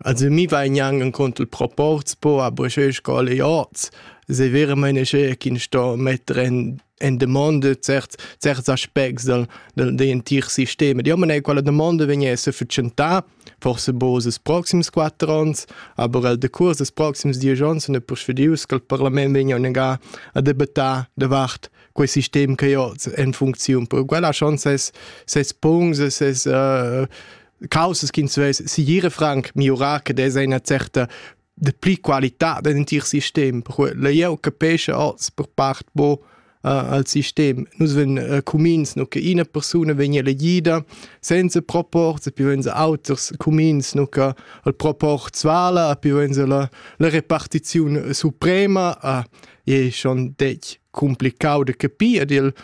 Also mi vai gnanc encunter il proporz po a broscher scola e oz. Se veramente che ch'in sto metter en en domanda certs certs aspects dal dal dei entir sistema. Io mané quella domanda vegnesse fatschentà forse bo ses proxims quatter ons, aber el decurs des proxims diesch ons sun persuadius che il parlament vegna negar a debattar davart quel sistem che io oz en funcziun. Per quella chance ses ses punts e ses uh, Causas ch'ins vess siguire franc miurar che des eine certa de pli qualità dell'entir sistem. Perquei jeu capesce oz per part bo uh, al sistem. Nus ven uh, cumins nu che ina persuna vegn elegida senza proport, e poi ven se auters cumins nu che il proport svala, e poi ven se la, la repartizione suprema. Uh, è schon detg complicau de capir ed il,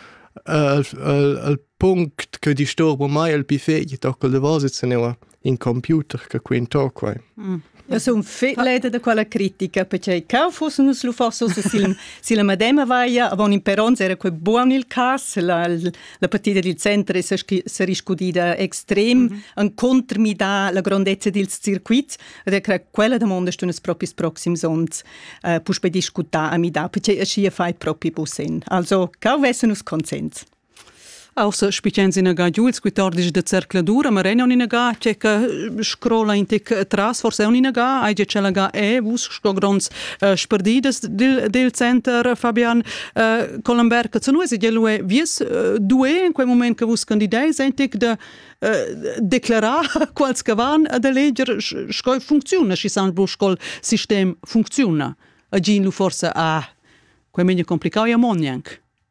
uh, il, il, il Punct che disturba mai il pi fegl tocca da vasa teneva in computer che quin to quai. Mm. Ja sun leda da quella critica perché cau fuss nus lu forsa su sil si la madema vaia avon in peronz era quei buon il cas la la partita dil center e se riscudida extrem mm -hmm. an contrmida la grandezza dils circuits ed era quella domanda stu nus propis proxims ons uh, puspei discutar a mi da perché aschi fai propi busen also cau vesse nus consens Aussa spichens inaga giu ils quitordis da zercladur, ma ren inaga che che scrola in tic tras, forse un inaga, ai ge chelaga e vus sto gronds uh, sperdidas dil, dil center, Fabian uh, Colomber, che zenu es gelue vies uh, due in quel moment che vus candideis ein tic de uh, declarar quals che van ad eleger sco funcziona, schi san bu scol sistem funcziona. A gin lu forse ah, quel meglio complicau ja mon jank.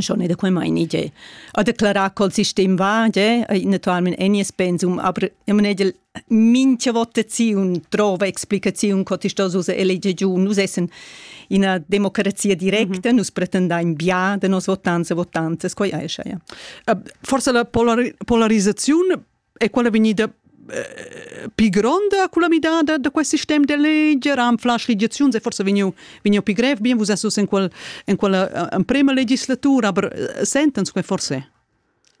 schon in der quema in ide a declarar col sistem va je naturalmente enies pensum aber ich meine minche votaziun trova explicaziun co ti sto usa elege giù nus essen in una democrazia directa mm -hmm. nus pretendain bia de nos votanze votanzes quai aischa ja forse la polar polarizzaziun è quella vegnida eh, pi gronda con la midada da quel sistem de legge ran flash legiazions è forse vegniu vegniu pi grev bien vus esus in quel in quella emprema legislatura aber sentens quei forse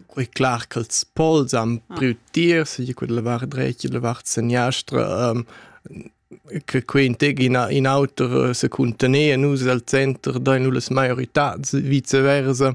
Quei clar che els pols am ah. priu tir, se quella vart drecia, la vart seniastra, um, che quei integ in, in auter eh, se contenere nus al center da nulle majoritats vice versa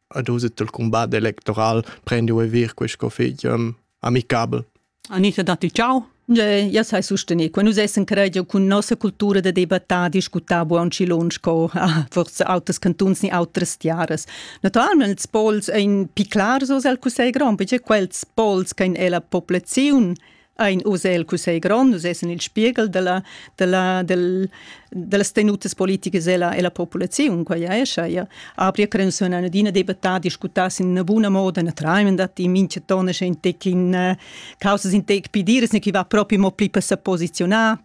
ad usit il combat electoral prendi e vir questo fig um, amicabel. Anita datti ciao. Ja sai sustené, quando essen credio con nossa cultura da debattare, discutar buon cilons co ah, forse autres cantuns ni autres tiaras. Naturalment ils pols ein piclar so sel cusei grand, perché quels pols che in ella popolazione ein oz el cussegl grond, oz essen il spiegel della, della, del, dellas tenutas politiches ella, ella populaziun, quai ja escha. Ja. Apri credenzion an adina debattar, discutar in una buna moda, na tramen da ti, minche tona sche in tec in uh, causas in tec pidiras, ne chi va propi mo pli per se posizionar,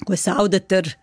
quei saudeter